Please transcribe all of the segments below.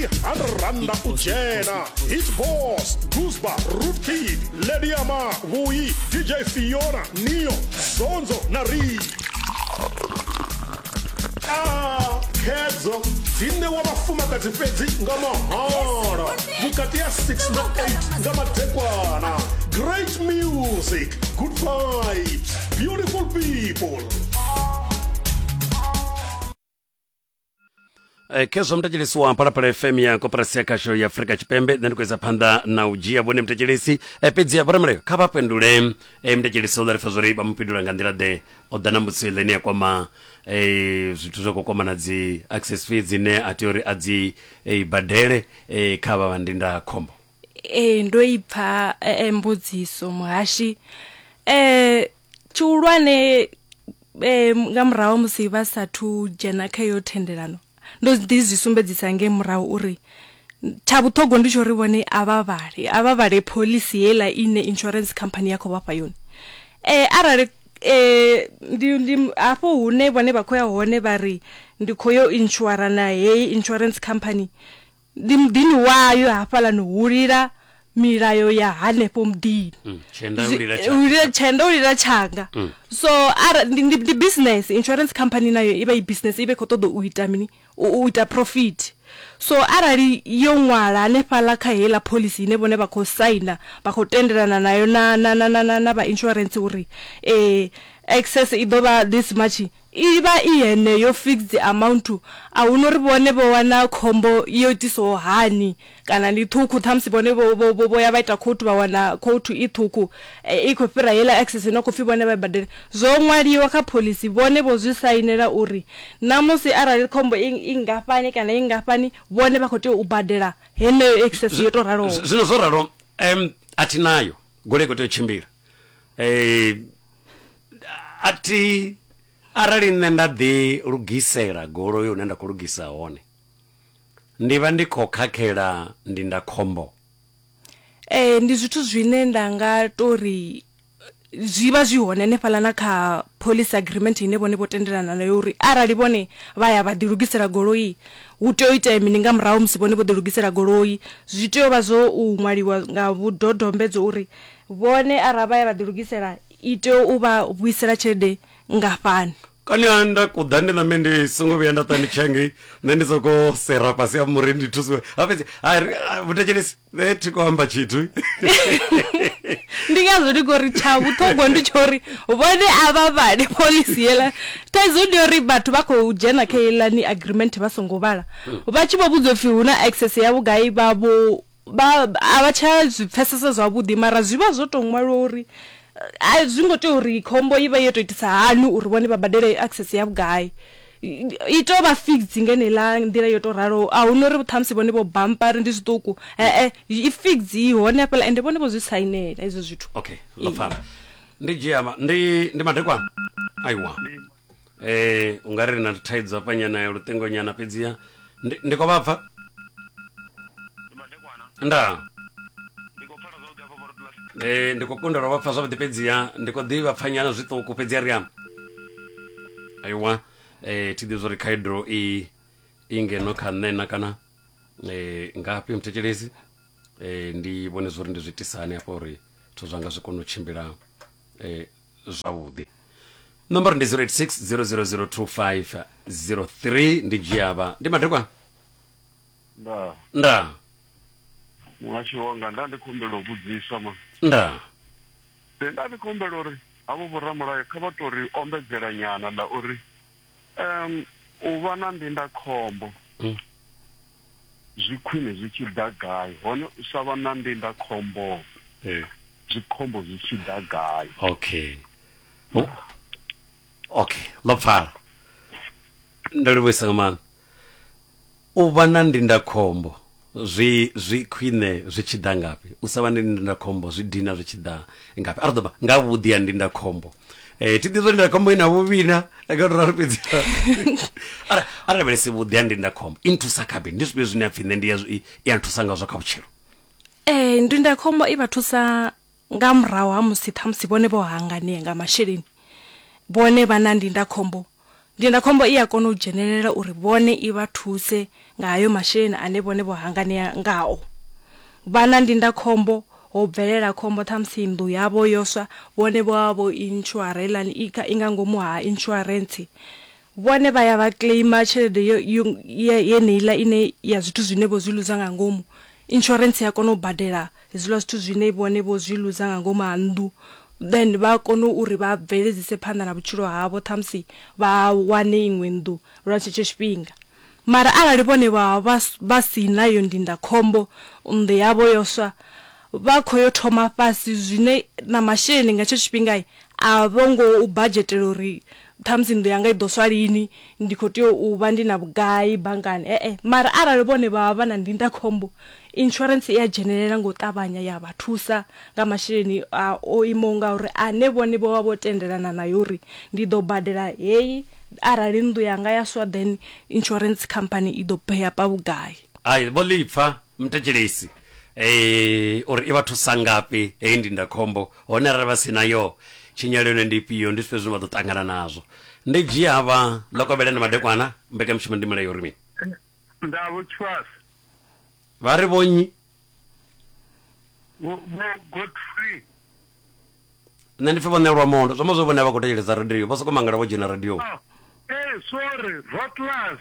100 randa u dzhena hit boss gusba root kid lady ama vhuyi dj fiona neo zonzo na ri Ah, khedzo dzi ṋewa vhafumakadzi fhedzi nga mahala vhukati ya 6 na 8 nga madekwana great music good vibes beautiful people Eh, khezwo mthetshelesi wa phalaphala fm ya koporasi ya khasho ya afurika tshipembe nṋe ndi khou isa phanḓa na u dzhia vhone mthetshelesi eh, fhedzi ya vhoramulayo kha vha fhindule eh, mthetshelesi o ḓa ri pfa zwori vha mu fhindula nga nḓila ḓe o ḓa na mbudziso ile ine ya kwama eh, zwithu zwa khou kwama na dzi access fee dzine a tea uri a dzi eh, badele eh, kha vha vha ndindakhombo ee ndo i pfa eh, eh, mbudziso muhashi eh tshihulwane eh, nga murahu musi vha sathu dzhena kha iyo thendelano ndo ḓi zwi sumbedzisa nge murahu uri tsha vhuṱhogwa ndi tsho uri vhone a vha vhale a vha vhale pholisi heiḽa ine insurance company ya khou vhafha yone eh arali eh ndi ndi hafho hune vhone vha khou ya hone vha ri ndi khou yo inshura na heyi insurance company Ndi muḓini wayo hafhaḽani hu lila milayo ya hanefho muḓini Mm, tshenda u lila Zwi- tsha- u lila tshenda u lila tshanga Mm. so ara ndi, ndi, ndi business insurance company nayo i vha i business i vha i khou ṱoḓa u ita mini u, u ita profit so arali yo ṅwala hanefhaḽa kha heiḽa phoḽisi ine vhone vha khou saina vha khou tendelana nayo na, na, na, na, na, na vha insurance uri eh, excess i ḓo vha this much I vha i heneyo fixed amount, a huna uri vhone vho wana khombo yo itisaho hani kana ndi ṱhukhu ṱhamusi vhone vho vho vho vho ya vha ita court vha wana court i ṱhukhu i khou fhira heiḽa excess ine ya khou pfhi vhone vha i badele. Zwo ṅwaliwa kha phoḽisi, vhone vho zwi sainela uri ṋamusi arali khombo i i nngafhani kana i nngafhani vhone vha khou tea u badela heneyo excess yo tou raloho. Zwino zwo ralo, a thi nayo, goloi i khou tea u tshimbila. a thi arali nṋe nda ḓi lugisela goloi hune nda khou lugisa hone ndi vha ndi khou khakhela ndindakhombo. Ee ndi zwithu zwine nda nga tori zwi vha zwi hone hanefhaḽa na kha phoḽisi agreement ine vhone vho tendelana nayo uri arali vhone vha ya vha ḓi lugisela goloi hu tea u itea mini nga murahu ha musi vhone vho ḓi lugisela goloi zwi tea u vha zwo u ṅwaliwa nga vhudodombedzwa uri Vhone arali vha ya vha ḓilugisela, i tea u vha vhuisela tshelede nngafhani? Kani ha nda kuḓa ndi ṋambe ndi songo vhuya nda ṱwa ndi tshi ya ngei nṋe ndi soko sera fhasi ha muri ndi thusiwe ha fhedzi vhuthetshelesi nṋe thi khou amba tshithu ndi ngazwo ndi ngori tsha vhuṱhogwa ndi tsho uri vhone a vha vhale pholisi yela thaidzo ndi uri vhathu vha khou dzhena kha yelani agreement vha songo vhala vha tshi vho vhudzwa upfhi hu na access ya vhugai vha vho Vha, a vha tsha zwi pfesesa zwavhuḓi, mara zwi vha zwo tou ṅwaliwa uri a zwi ngo tea uri khombo i vha yo tou itisa hani uri vhone vha badele access ya vhugai. I tou vha fixed nga heneiḽa nḓila yo tou raloho, a hu na uri ṱhamusi vhone vho bampa uri ndi zwiṱuku, he-e, i fixed i hone hafhaḽa ende vhone vho zwi sainela hezwo zwithu. Okay, ndo pfala. Ndi dzhia, ndi, ndi madekwana? Aiwa. eh ungari ri na thaidzo hafha nyana ya luṱingo nyana fhedziha ndi ndi khou vha pfa nda eh ndi khou kundelwa vha pfa zwavhuḓi fhedziha ndi khou ḓivha pfa nyana zwiṱuku fhedziha ri amba aiwa eh thi ḓivhi zwori khaedu i i ngeno kha nṋe na kana eh ngafhi muthetshelesi eh ndi vhone zwori ndi zwi tisani hafha uri zwithu zwanga zwi kone u tshimbila eh zwavhuḓi nomboro ndi 0860002503 ndi dzhiavha ndi madekwa nda nda muhasho wanga nda ndi khumbela u vhudzisa ma nda nda ndi khumbela uri havho vhoramulayo kha vha tori ombedzela nyana ḽa uri Um, u vha na ndindakhombo mm. zwi khwine zwi tshi ḓa gai hone u sa vha na ndindakhombo eh. zwi khombo zwi tshi ḓa gai okay oh. okay ḽo pfala ndo livhuisa nga maanḓa U vha na ndindakhombo zwi zwi khwine zwi tshi ḓa ngafhi? U sa vha na ndindakhombo zwi dina zwi tshi ḓa ngafhi? A ri ḓo vha nga vhuḓi ha ndindakhombo Eh, thi ḓivhi zwa ndindakhombo i na vhuvhi na eh, nga uri ralo fhedzi Ara- a lavhelese vhuḓi ha ndindakhombo i nthusa kha mini ndi zwifhio zwine a pfhi nṋe ndi ya zwi- i- i a nthusa ngazwo kha vhutshilo Eh, ndindakhombo i vha thusa nga murahu ha musi ṱhamusi vhone vho hanganea nga masheleni vhone vha na ndindakhombo ndindakhombo i a kona u dzhenelela uri vhone i vha thuse nga hayo masheleni ane vhone vho hanganea ngao vha na ndindakhombo ho bvelela khombo ṱhamusi nnḓu yavho yo swa vhone vho vha vho insurance i nga ngomu ha insurance Vhone vha ya vha claimer tshelede yo yo ye- yeneiḽa ine ya zwithu zwine vho zwi luza nga ngomu. Insurance ya kona u badela hezwiḽa zwithu zwine vhone vho zwi luza nga ngomu ha nnḓu, then vha kono uri vha bveledzise phanḓa na vhutshilo havho ṱhamusi vha wane iṅwe nnḓu lwa tshetsho tshifhinga. Mara arali vhone vha vha vha vha sina iyo ndindakhombo, nnḓu yavho yo swa, vha khou yo thoma fhasi zwine na masheleni nga hetsho tshifhinga a vho ngo u badzhetela uri ṱhamusi nnḓu yanga i ḓo swa lini, ndi khou tea u vha ndi na vhugai banngani, e-e. Mara arali vhone vha vha vha na ndindakhombo, insurance i a dzhenelela nga u ṱavhanya ya vha thusa nga masheleni a o imaho ngauri ane vhone vho vha vho tendelana nayo uri ndi ḓo badela heyi arali nnḓu yanga ya swa then insurance company i ḓo pay-apa vhugai. Hai, vho ḽi pfa mthetshelesi eh uri i vha thusa ngafhi heyi ndindakhombo hone arali vha si nayo tshinyalelo yone ndi ifhio ndi zwifhio zwine vha ḓo ṱangana nazwo ndi dzhia havha ḽo kovhela na madekwana mbekanyamushumo ndi mulayo uri mini nda vho tshivhasa vha ri vhonyi vho vho godfrey nṋe ndi pfhe vho ṋelwa mondo zwo ma zwo vhone vha khou thetshelesa radio vho soko mangala vho dzhena radio oh eh sorry rotlas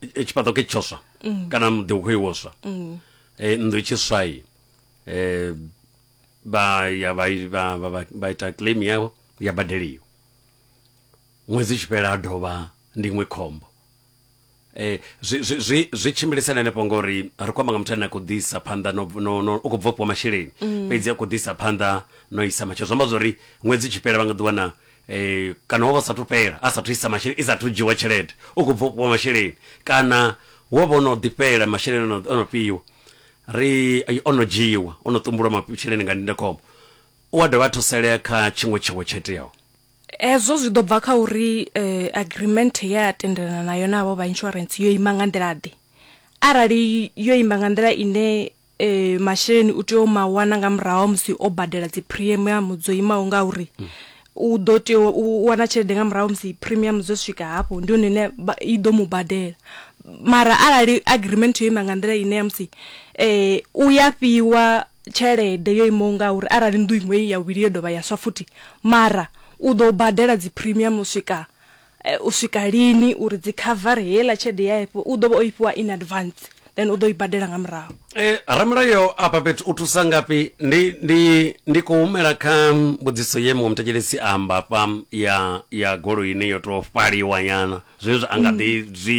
e, tshifhaṱo ke tshoswa mm. kana muḓi u khou iwoswa mm. e, nnḓu tshiswai e, vha ya vha ita claim yavho ya badeliwa ṅwedzi tshi fhela a dovha ndi iṅwe khombo eh zwi zwi zwi tshimbilisana hanefho ngori ri khou amba nga muthu ane a khou ḓisa phanḓa no no u khou bva fhiwa masheleni mm. fhedzi a khou ḓisa phanḓa no isa matshelo zwi amba zwori ṅwedzi tshi fhela vha nga ḓiwana eh, kana wo vha sathu fhela a sathu isa masheleni i sathu dzhiwa tshelede u khou bva u fhiwa masheleni kana wo vha ono ḓifhela masheleni ono- ono fhiwa ri eh, ono dzhiwa ono ṱumbulwa masheleni nga ndindakhombo u a dovha a thusalea kha tshiṅwe tshiwo tsho iteaho hezwo zwi ḓo bva kha uri eh, agreement ye a tendelana nayo navho vha insurance yo ima nga nḓila ḓe arali yo ima nga nḓila ine e, masheleni u tea u ma wana nga murahu musi o badela dzi premium dzo imaho nga uri mm. u ḓo tea u wana tshelede nga murahu musi premium dzo swika hafho ndi hone ine i ḓo mu badela mara arali agreement yo ima nga nḓila ine ya musi eh u ya fhiwa tshelede yo imaho nga uri arali nnḓu iṅwe ya vhili yo dovha ya swa futhi mara u ḓo badela dzi premium u swika U swika lini uri dzi khavare heiḽa tshelede ya ifhiwa, u ḓo vha o i fhiwa in advance then u ḓo i badela nga murahu. Ramulayo afha fhethu u thusa ngafhi? Ndi, ndi, ndi khou humela kha mbudziso ye muṅwe muthetshelesi a amba afha ya, ya goloini yo tou fhaliwa nyana, zwenezwi a nga ḓi zwi.